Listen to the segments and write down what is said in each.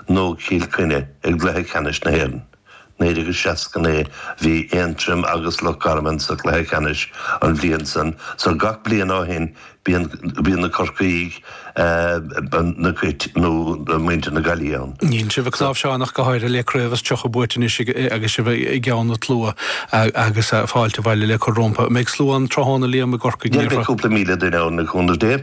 nó Cill Chainnigh i gcluiche ceannais na hÉireann. 1969 bhí Aontroim agus Loch Garman sa chluiche ceannais an bhliain san so gach bliain ó shin bíonn na Corcaígh na Cait nó muintir na Gaillimhe ann. Níl sibh ag cnáimhseán ach go háirithe le craobh is tríocha buaite anois agus sibh i gceann an tslua agus fáilte abhaile le cur rompu. An mbeidh slua ann tráthnóna Liam i gCorcaigh? Níl ach cúpla míle duine ann le cúnamh Dé.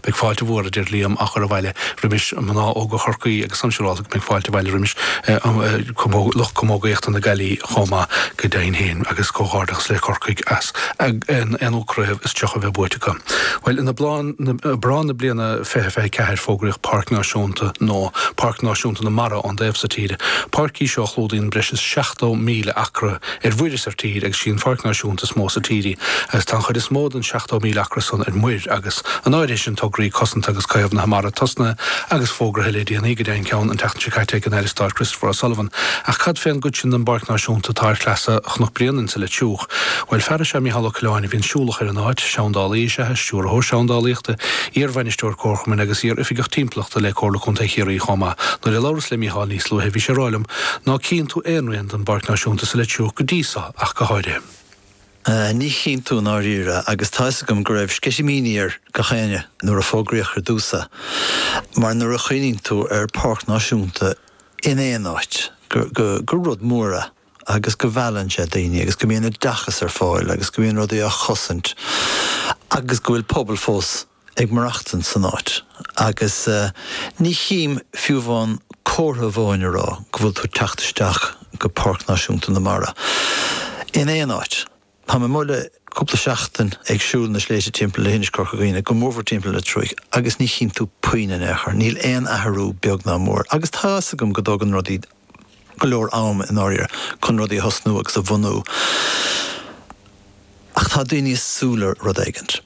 Beidh fáilte mhór, a deir Liam, á chur abhaile roimis mhná óga Chorcaí agus is dócha, a Shiobhán, go mbeidh fáilte abhaile roimis lucht camógaíochta na Gaillimhe chomh maith, go deimhin féin, agus comhghairdeachas le Corcaigh as an aonú craobh is tríocha a bheith buaite acu. Bhuel, in Aibreán na bliana fiche fiche ceathair fógraíodh Páirc Náisiúnta nua Páirc Náisiúnta na Mara ón dtaobh so tíre. Páirc í seo a chlúdaíonn breis is seachtó míle acra, ar mhuir is ar tír, agus is í an pháirc náisiúnta is mó sa tír í, agus tá an chuid is mó den 70,000 acra san ar muir, agus in áireamh ansin tograí cosanta agus caomhnaithe mara tosnaithe agus fógraithe le déanaí, go deimhin ceann an tseachtain seo caite ag an Aire Stáit Christopher O'Sullivan. Ach cad fé an gcuid sin den bpáirc náisiúnta atá ar shleasa Chnoc Bréanainn insa Leitriúch? Bhuel, fear is ea Micheál Ó Coileáin a bhíonn siúlach ar an áit, seandálaí is ea, stiúrthóir seandálaíochta, iar-bhainisteoir comharchumainn agus iar-oifigeach timpeallachta le Comhairle Contae Chiarraí chomh maith. Nuair a labhras le Micheál níos luaithe bhí sé ag rá liom, Ná cíonn tú aon don bPáirc Náisiúnta sa Leitriúch go dtí seo ach go háirithe. Ní chíonn tú i ndáiríre, agus tá 'fhios agam go raibh sceitimíní ar gach éinne nuair a fógraíodh ar dtús é, mar nuair a chuimhníonn tú ar Pháirc Náisiúnta in aon áit, gur rud mór é agus go meallann sé daoine agus go mbíonn oideachas ar fáil agus go mbíonn rudaí á gcosaint agus go bhfuil pobal fós. ag maireachtaint san áit agus ní chím fiú amháin comhartha amháin a rá go bhfuil tú ag teacht isteach go Páirc Náisiúnta na Mara in aon áit. Tá mé amuigh le cúpla seachtain ag siúl na sléibhte timpeall Leithinis Corca Dhuibhne go mórmhór timpeall Leitriúigh agus ní chíonn tú puinn in aon chor, níl aon athrú beag ná mór agus tá a fhios agam go dtógann rudaí go leor am i ndáiríre chun rudaí a thosnú agus a bhunú. Ach tá daoine ag súil le rud éigin.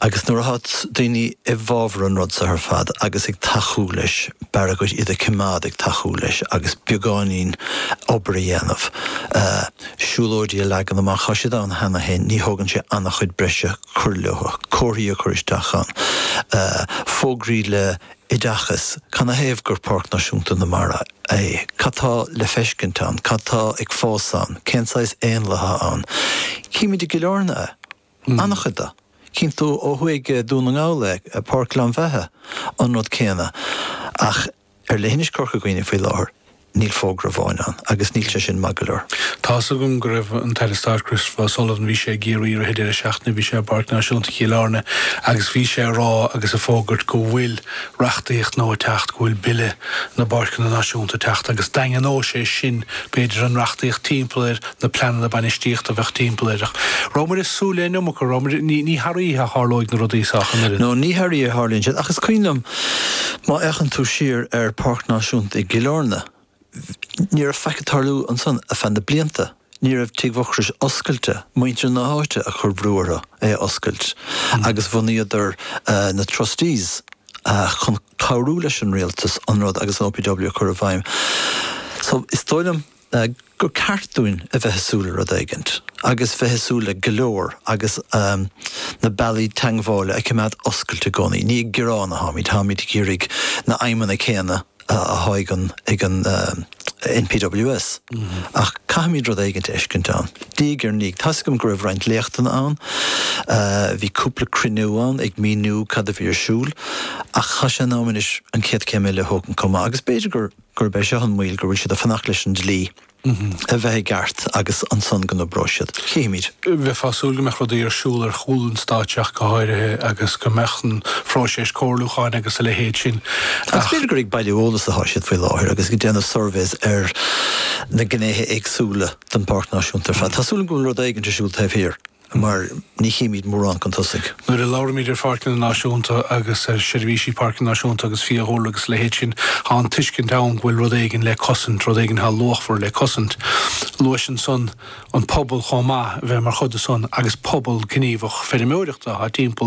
Agus nuair atá daoine i bhfabhar an rud seo ar fad agus ag tacú leis, ba mhaith an rud iad a coimeád ag tacú leis agus beagáinín obair a dhéanamh, siúlóidí a leagan amach. Tá siad ann cheana féin, ní thógann sé an-chuid breise cur leo, comharthaí a chur isteach ann, fógraí le oideachais, canathaobh gur Páirc Náisiúnta na Mara é, cad tá le feiscint ann, cad tá ag fás ann, cén saghas éanlaith atá ann. Chímid i gCill Áirne é, an-chuid de. Cíonn tú ó thuaidh i Dún na nGall é, Páirc Ghleann Bheithe, an rud céanna. Ach ar leithinis Corca Dhuibhne faoi láthair, Níl fógra amháin ann, agus níl sé sin maith go leor. Tá's agam go raibh an tAire Stáit Christopher O'Sullivan, bhí sé i gCiarraí i rith an deireadh seachtaine, bhí sé i bPáirc Náisiúnta Chill Airne agus bhí sé ag rá agus ag fógairt go bhfuil reachtaíocht nua ag teacht, go bhfuil Bille na bPáirceanna Náisiúnta ag teacht agus daingneoidh sé sin b'fhéidir an reachtaíocht timpeall air. na pleananna bainistíochta a bheadh timpeall air. An rabhamar ag súil leis an iomarca, rabhamar, ní thar oíche a tharlóidh na rudaí seo ach an oiread. Nó ní thar oíche a tharlaíonn siad, ach is cuimhin liom má fhéachann tú siar ar Páirc Náisiúnta i gCill Airne, ní raibh faic ag tarlú ansan ar feadh na blianta, ní raibh Tigh Mhucrois oscailte, muintir na háite a chuir brú orthu é a oscailt agus bhunaíodar na Trustees chun cabhrú leis an rialtas an rud agus an OPW a chur i bhfeidhm. So is dóigh liom. gur ceart dúinn a bheith ag súil le rud éigint, agus bheith ag súil le go leor, agus na bealaí teagmhála a choimeád oscailte i gcónaí. Ní ag gearán atháimid, táimid ag iarraidh na haidhmeanna céanna atá ag an NPWS, ach caithfimid rud éigint a fheiscint ann, diaidh ar ndiaidh. Tá's agam go raibh roinnt léachtanna ann, bhí cúpla cruinniú ann ag míniú cad a bhí ar siúl, ach tá sé in am anois an chéad chéim eile a thógaint chomh maith, agus b'fhéidir gur. gurb é seo an mhoill, go bhfuil siad ag fanacht leis an dlí a bheith i gceart agus ansan go n-oibreoidh siad. Chífimid. Bheifeá ag súil go mbeadh rudaí ar siúl ar chúl an stáitse ach go háirithe agus go mbeadh an phróiseas comhairliúcháin agus a leithéid sin ach. Agus b'fhéidir gur ag bailiú eolais atá siad faoi láthair agus ag déanamh suirbhéas ar na gnéithe éagsúla den Pháirc Náisiúnta ar fad. Tá súil agam go bhfuil rud éigint ar siúl taobh thiar. mar ní chímíd mórán chun tosaigh. Nuair a labhraímid ar pháirceanna náisiúnta agus ar sheirbhísí páirce náisiúnta agus fiadhúlra agus a leithéid sin, tá an tuiscint ann go bhfuil rud éigin le cosaint, rud éigin atá luachmhar le cosaint. Luais ansan an pobal chomh maith a bheith mar chuid de san agus pobal gníomhach feirmeoireachta athá timpeall